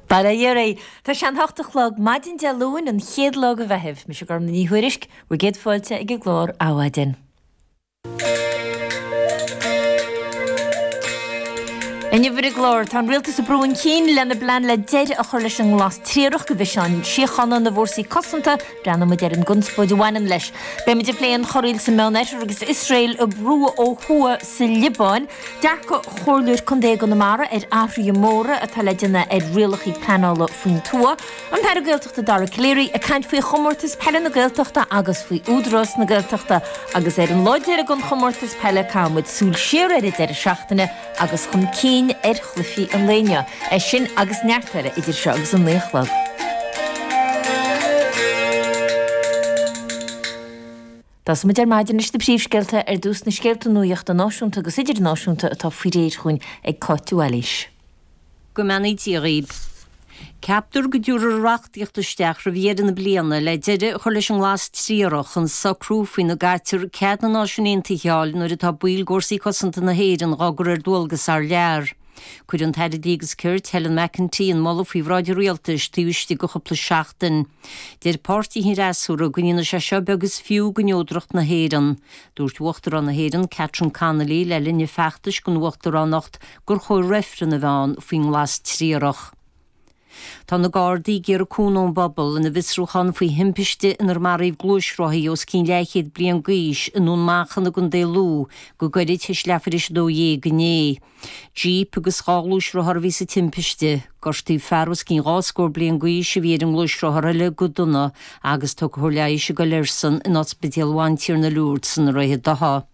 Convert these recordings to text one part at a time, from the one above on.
Bail ó Dhia oraibh, tá sé an hocht a chlog maidin Dé Luain, an chéad lá de Mheitheamh. Mise Gormfhlaith Ní Thuairisg, bhur gcéad fáilte ag an gclár Adhmhaidin. Inniu ar an gclár, tá an Rialtas ag brú chun cinn lena bplean le deireadh a chur leis an nglas triarach do mhisin síochána na bhfórsaí cosanta, Breathnóidh muid ar an gconspóid a bhaineann leis. Beidh muid ag plé an chorraíl sa Meán Oirthear agus Iosrael ag brú ó thuaidh sa Liobáin, dearcadh Chomhairleoir Contae i gConamara ar athruithe móra atá le déanamh ar rialacha pleanála faoin tuath, an tAire Gaeltachta Dara Calleary ag caint faoi Chomórtas Peile na Gaeltachta agus faoi Údarás na Gaeltachta, agus ar an lá deiridh den Chomórtas Peile caithfidh muid súil siar ar an deireadh seachtaine agus chun cinn ar chluichí an lae inniu. É sin agus neart eile idir seo agus a naoi a chlog. Tosóidh muid ar maidin leis na príomhscéalta ar dtús, na scéalta nuachta náisiúnta agus idirnáisiúnta atá faoi réir dhúinn ag Cáit Wallis. go mbeannaí Dia dhaoib. Ceaptar go dtabharfar reachtaíocht isteach roimh dheireadh na bliana le deireadh a chur leis an nglas triarach an socrú faoina gcaitear cead na Náisiún Aontaithe a fháil nuair atá baill d'fhórsaí cosanta na hÉireann dhá gcur ar dualgas thar lear. Cuirfidh an tAire Dlí agus Cirt, Helen McEntee, an moladh faoi bhráid an Rialtais taobh istigh de chúpla seachtain. Deir páirtithe an fhreasúra go ndéanfaidh sé seo beag is fiú de neodracht na hÉireann. Dúirt Uachtarán na hÉireann, Catherine Connolly, le linn a feachtais don uachtaránacht, gur chóir reifreann a bheith ann faoin nglas triarach. Tá na Gardaí ag iarraidh cúnamh ón bpobal ina bhfiosrúchán faoi thimpiste inar maraíodh gluaisrothaí os cionn leathchéad bliain d'aois i nDún Manchán i gContae Lú go gairid tar éis leathuair tar éis 12 inné. Jeep agus dhá ghluaisrothar a bhí sa timpiste. Gortaíodh fear os cionn dhá scór bliain d'aois a bhí ar an ngluaisrothar eile go dona agus tá cóir leighis á cur airsean in Ospidéal Bhantiarna Lourdes i nDroichead Átha.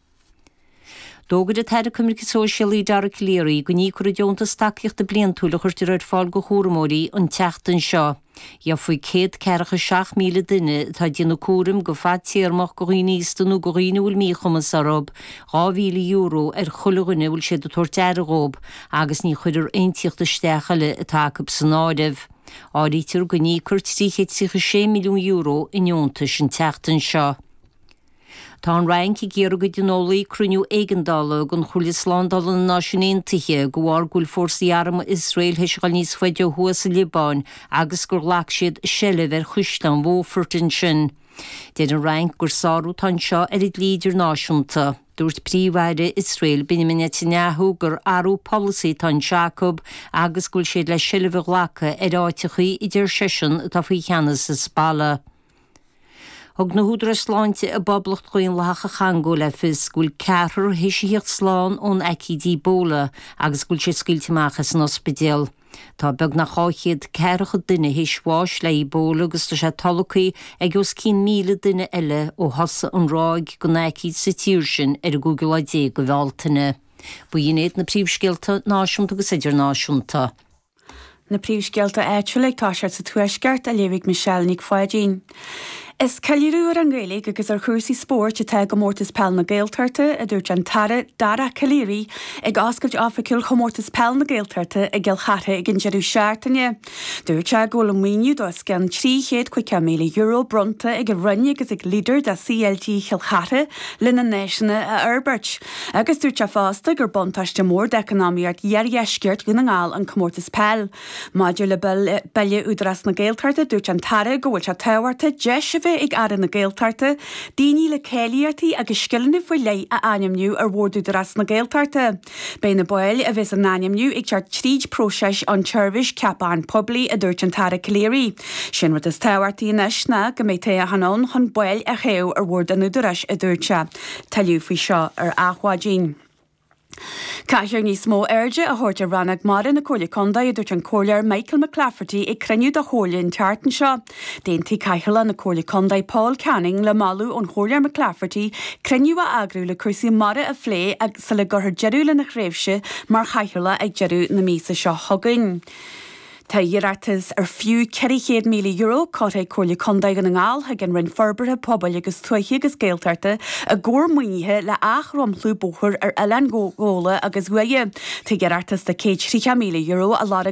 D'fhógair an tAire Coimirce Sóisialaí Dara Calleary go n-íocfar an deontas tacaíochta bliantúil a chuirtear ar fáil do chúramóirí an tseachtain seo. Gheobhaidh 147,000 duine atá ag déanamh cúraim go fadtéarmach do dhaoine aosta nó do dhaoine a bhfuil míchumas orthu, €2,000 ar chuile dhuine a bhfuil siad ag tabhairt aire dhóibh agus ní chuirfear aon tíocht isteach eile atá acu san áireamh. Áirítear go n-íocfar €336 milliún i ndeontais an tseachtain seo. Tá an Fhrainc ag iarraidh go dtionólfaí cruinniú éigeandála den Chomhairle Slándála na Náisiún Aontaithe de bharr go bhfuil fórsaí armtha Iosrael tar éis gabháil níos faide ó thuaidh sa Liobáin agus gur ghlac siad seilbh ar chaisleán Beaufort ansin. Deir an Fhrainc gur sárú atá anseo ar an dlí idirnáisiúnta. Dúirt Príomh-Aire Iosrael Benjamin Netanyahu gur athrú polasaí atá anseo acu agus go bhfuil siad le seilbh a ghlacadh ar áiteachaí a deir seisean atá faoi cheannas Hizbollah. Thug na húdaráis sláinte i bPoblacht Dhaonlathach an Chongó le fios go bhfuil ceathrar théis a thíocht slán ón aicíd Ebola agus go bhfuil sé scaoilte amach as an ospidéal. Tá beagnach dhá chéad ceathracha duine théis bháis le Ebola agus tá sé tolgtha ag os cionn míle duine eile ó thosaigh an ráig den aicíd sa tír sin ar an gcúigiú lá déag de Bhealtaine. B'in iad na príomhscéalta náisiúnta agus idirnáisiúnta. Na príomhscéalta áitiúla ag tosacht sa Tuaisceart á léamh ag Michelle Nic Pháidín. Is ceiliúradh ar an nGaeilge agus ar chúrsaí spóirt atá i gComórtas Peil na Gaeltachta, a dúirt an tAire Dara Calleary ag oscailt oifigiúil Chomórtas Peil na Gaeltachta i gCill Chartha ag an deireadh seachtaine. Dúirt sé go bhfuil an maoiniú de os cionn €350,000 bronnta ag an Roinn agus ag LEADER de CLG Chill Chartha lena n-áiseanna a fhorbairt. Agus dúirt sé fosta gur buntáiste mór d'eacnamaíocht iardheisceart Dhún na nGall an comórtas peil. Maidir le Bille Údarás na Gaeltachta, dúirt an tAire go bhfuil sé tábhachtach deis a bheith ag Aire na Gaeltachta daoine le cáilíochtaí agus scileanna faoi leith a ainmniú ar Bhord Údarás na Gaeltachta. Beidh na baill a bheas á n-ainmniú ag teacht tríd próiseas an tSeirbhís Ceapacháin Poiblí, a dúirt an tAire Calleary. 'Sé an rud is tábhachtaí anois ná go mbeidh toghchán ann chun baill a thoghadh ar Bhord an Údaráis, a dúirt sé. Tuilleadh faoi seo ar Adhmhaidin. Caithfear níos mó airde a thabhairt ar rannóg mara na Comhairle Contae, a dúirt an Comhairleoir Michael McClafferty ag cruinniú de Chomhairle an tseachtain seo. D'aontaigh Cathaoirleach na Comhairle Contae Paul Canning le moladh ón Chomhairleoir McClafferty cruinniú a eagrú le cúrsaí mara a phlé sula gcuirfear deireadh lena thréimhse mar chathaoirleach ag deireadh na míosa seo chugainn. Tá iarratas ar fiú €400,000 curtha ag Comhairle Contae Dhún na nGall chuig an Roinn Forbartha Pobail agus Tuaithe agus Gaeltachta i gcomhair maoinithe le athdhromchlú bóthair ar Oileáin Ghabhla agus Uaighe. Tá iarratas de €130,000 á lorg